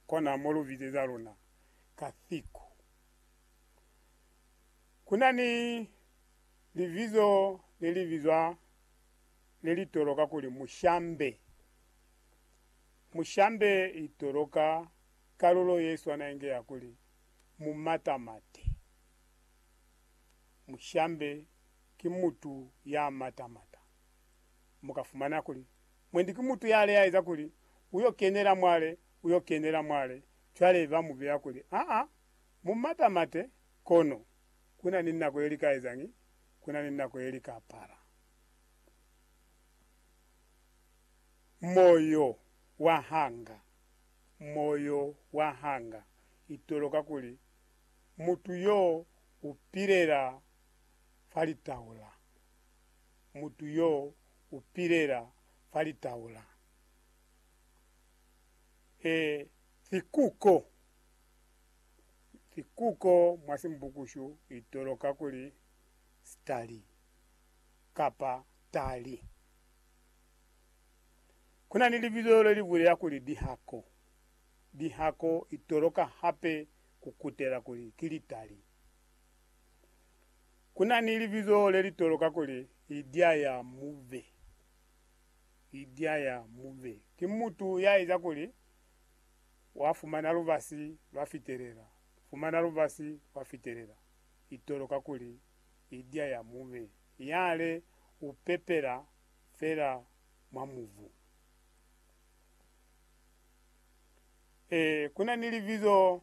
Kona mo lu bizeza luna ka siku. Ku na ni libizo le li bizwa le li toloka kuli Mushambe. Mushambe i toloka kalulo ye swana inge ya kuli Mumatamate. Mushambe ki mutu ya matamata. Mu ka fumana kuli Mwendi ki mutu ya leaeza kuli, Uyo kenela mwale, uyo kenela mwale. Cwale ba mu beya kuli, Aa, mu mata mate, kono kuna ni nako ye li ka ezañi? Kuna ni nako ye li ka apara. Moyo wa hanga, moyo wa hanga, itoloka kuli mutu yo u pilela fa litaula, mutu yo U pilela fa litau la he fikuko. Fikuko mwa Simbukushu i toloka kuli stali kapa tali. Ku na ni libizo le li bulela kuli dihako. Dihako i toloka hape ku kutela kuli ki litali. Ku na ni libizo le li toloka kuli Idya ya Mube. Idya ya Mube ki mutu ya eza kuli wa fumana lubasi lwa fitelela, fumana lubasi lwa fitelela. I toloka kuli Idya ya Mube, yale u pepela fela mwa mubu. Ee, ku na ni libizo.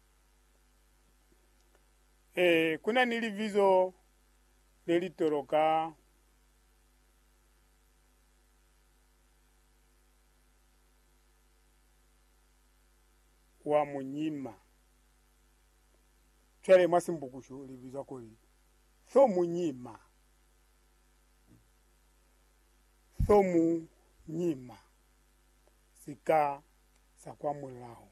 Ee, ku na ni libizo le li toloka wa munyima. Cwale mwa Simbukushu li bizwa kuli thomunyima. Thomunyima, sika sa kwa mulaho.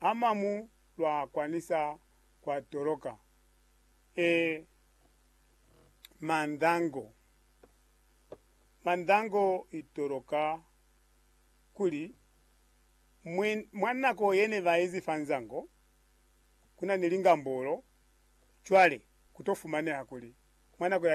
amamu lwa kwanisa kwa toloka e mandango. Mandango i toloka kuli mwi, mwa nako ye ne ba ezi fa nzango, ku na ni lingambolo, cwale ku to fumaneha kuli mwa nako ya lingambolo,